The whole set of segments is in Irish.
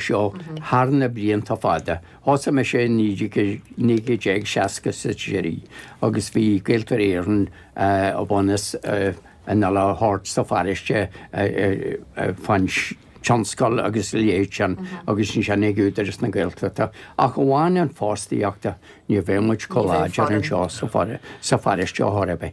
seo thar na blianta fada. Thosaigh muid i 1963 agus bhí Gaeltarra Éireann ag bunú na n-ollann thart sa pharóiste fán tionscal agus leis sin agus ansin ag Údaras na Gaeltachta ach amháin an fostaíochta, ní bheadh muid chomh láidir anseo sa pharóiste a thoradh.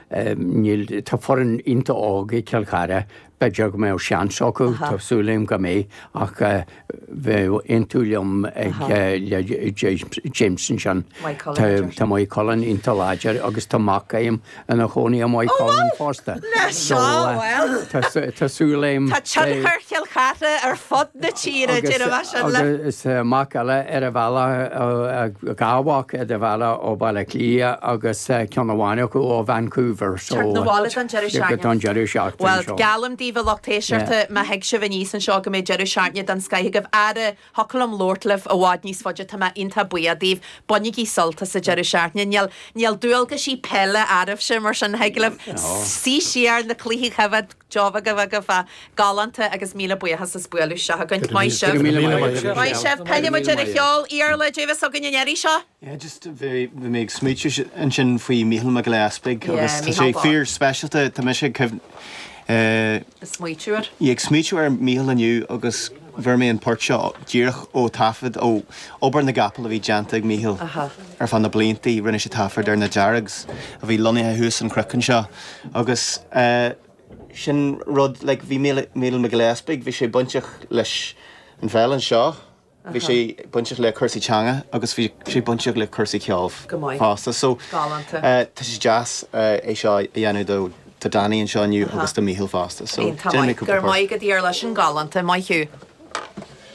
Níl, tá foireann iontach óg ag Cill Chartha, b'fhéidir go mbeadh seans acu, tá súil agam go mbeidh ach bheadh aontú liom ag James ansin. Tá Maigh Cuilinn iontach láidir agus tá mac a'm ina chónaí i Maigh Cuilinn fosta. So tá súil a'm. Tá tionchar Chill Chartha ar fud na tíre, déarfaidh mé sin. Agus tá mac eile ar an bhealach. Gabháil abhaile ó Bhaile Átha Cliath agus ceann amháin acu ó Vancouver so Teacht 'na bhaile don deireadh seachtaine. don deireadh seachtaine Bhuel, seo. geallaim daoibh a lucht éisteachta má thig sibh aníos anseo go mbeidh deireadh seachtaine den scoith agaibh. Ara, thiocfadh liom labhairt libh i bhfad níos faide, tá mé iontach buíoch daoibh. Bainigí sult as an deireadh seachtaine. Níl, níl dualgaisí peile oraibhse mar sin thig libh suí siar na cluichí a choimhéad, Job agaibh galánta agus míle buíochas as bualadh isteach againn. Go raibh míle míle maith agat Ciara. Maith sibh. Pillfidh muid ar an cheol Iarla Caidé a bheas againn an iarraidh seo. Yeah just bhí mé ag smaoitiú ansin faoi Mícheál Mac Giolla Easpaig agus tá sé fíor speisialta tá mise ag cuimhn eh Ag smaoitiú air. Ag smaoitiú ar Mícheál inniu agus fuair mé an port seo díreach ó taifead ó obair na gcapall a bhí déanta ag Mícheál ar feadh na bliantaí. Rinne sé taifead ar na Deargs a bhí lonnaithe thuas an cnoc anseo agus sin rud like bhí Mícheál Mac Giolla Easpaig bhí sé bainteach leis an pheil anseo, bhí sé bainteach le cúrsaí teanga agus bhí sé bainteach le cúrsaí ceoil fosta so tá sé deas é seo a dhéanamh dó Tá Danny anseo inniu agus tá Mícheál fosta so déanfaidh mé cúpla port. Go raibh maith agat, a Iarla, sin galánta, maith thú.